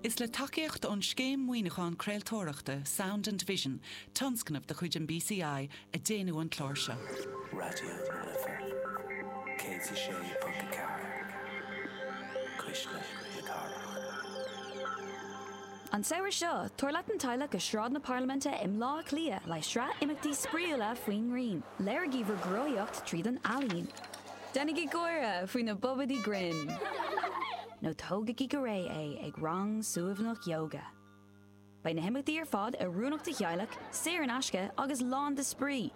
Is le tacaíocht ón Scéim Maoiniúcháin Craoltóireachta Sound and Vision, tionscnamh de chuid an BCI, a déanadh an clár seo. Raidió na Life 106.4, cuisle na cathrach. An samhradh seo, tabhair leat an teaghlach go Sráid na Parlaiminte i mBleá Cliath le haghaidh sraith imeachtaí spraíúla faoin ngrian. Léirigí bhur gcruthaíocht tríd an ealaín. Déanaigí gáire faoi na bobaidí grinn! Nó tógaigí go réidh é ag rang suaimhneach yoga. Beidh na himeachtaí ar fad oiriúnach do theaghlach, saor in aisce agus lán de spraoi,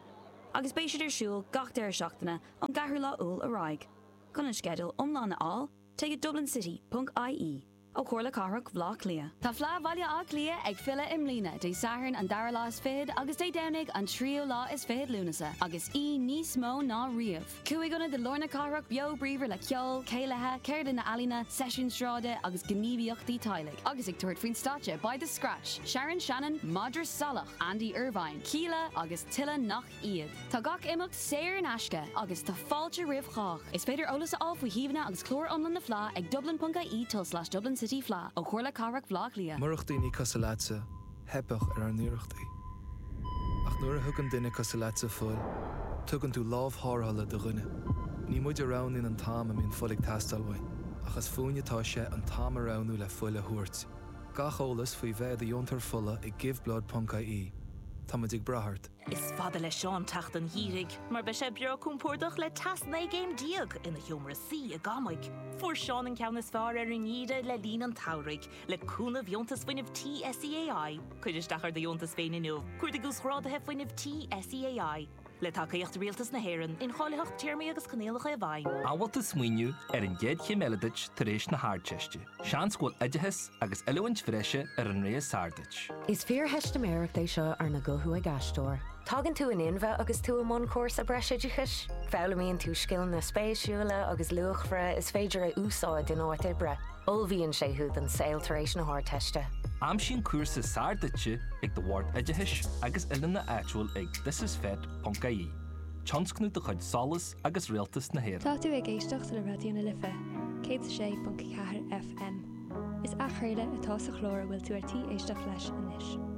agus beidh siad ar siúl gach deireadh seachtaine ón gceathrú lá Iúil ar aghaidh. Chun an sceideal iomlán a fháil, téigh go dublincity.ie. ó Chomhairle Cathrach Bhleá Cliath. Tá Fleadh Bhaile Átha Cliath ag filleadh i mbliana, Dé Sathairn an dara lá is fichead agus Dé Domhnaigh an tríú lá is fichead Lúnasa, agus í níos mó ná riamh. Cúig ionad i lár na cathrach beo bríomhar le ceol, céilithe, ceardlanna ealaíne, seisiúin sráide agus gníomhaíochtaí teaghlaigh. Agus ag tabhairt faoin stáitse beidh The Scratch, Sharon Shannon, Madra Salach, Andy Irvine, Kíla agus tuilleadh nach iad. Tá gach imeacht saor in aisce agus tá fáilte roimh chách. Is féidir eolas a fháil faoi shuíomhanna agus clár iomlán na Fleá ag dublin.ie tulslais Dublin City Fleadh ó Chomhairle Cathrach Bhleá Cliath. Murach daoine cosúil leatsa, theipfeadh ar ár n-iarrachtaí. Ach nuair a thugann duine cosúil leatsa fuil, tugann tú lámh tharrthála do dhuine. Ní muid a roghnaíonn an t-am a mbíonn fuil ag teastáil uainn, ach is fúinn atá sé an t-am a roghnú le fuil a thabhairt. Gach eolas faoi bheith i do dheontóir fola ag giveblood.ie. Táimid ag brath ort. Is fada le Seán teacht an gheimhridh mar beidh sé breá cúmpórdach le teas 19 gcéim ina sheomra suí i gCamaigh. Fuair Seán an ceann is fearr ar an ngeimhreadh le linn an tsamhraidh. Le cúnamh Dheontas Fuinnimh Tí SEAI, cuir isteach ar do dheontas féin inniu, cuardaigh Uasghráduithe Fuinnimh Tí SEAI. Le tacaíocht Rialtas na hÉireann, incháilitheacht Téarmaí agus Coinníollacha i bhfeidhm. An bhfuil tú ag smaoineamh ar an gcéad chéim eile duit tar éis na hArdteiste. Seans go bhfuil oideachas agus oiliúint bhreise ar an rogha is fearr duit. Is fíortheistiméireacht é seo arna guthú ag aisteoir. Tagann tú in inmhe agus tú i mbun cúrsa breisoideachais. Foghlaimíonn tú scileanna spéisiúla agus luachmhara is féidir a úsáid in áit oibre. Ullmhaíonn sé thú don saol tar éis na hArdteiste. Aimsigh an cúrsa is fearr duitse ag do Bhord Oideachais agus Oiliúna áitiúil ag thisisfet.ie, tionscnamh de chuid SOLAS, agus Rialtas na hÉireann. Tá tú ag éisteacht le Raidió na Life, 106.4 FM. Is athchraoladh atá sa chlár a bhfuil tú ar tí éisteacht leis anois.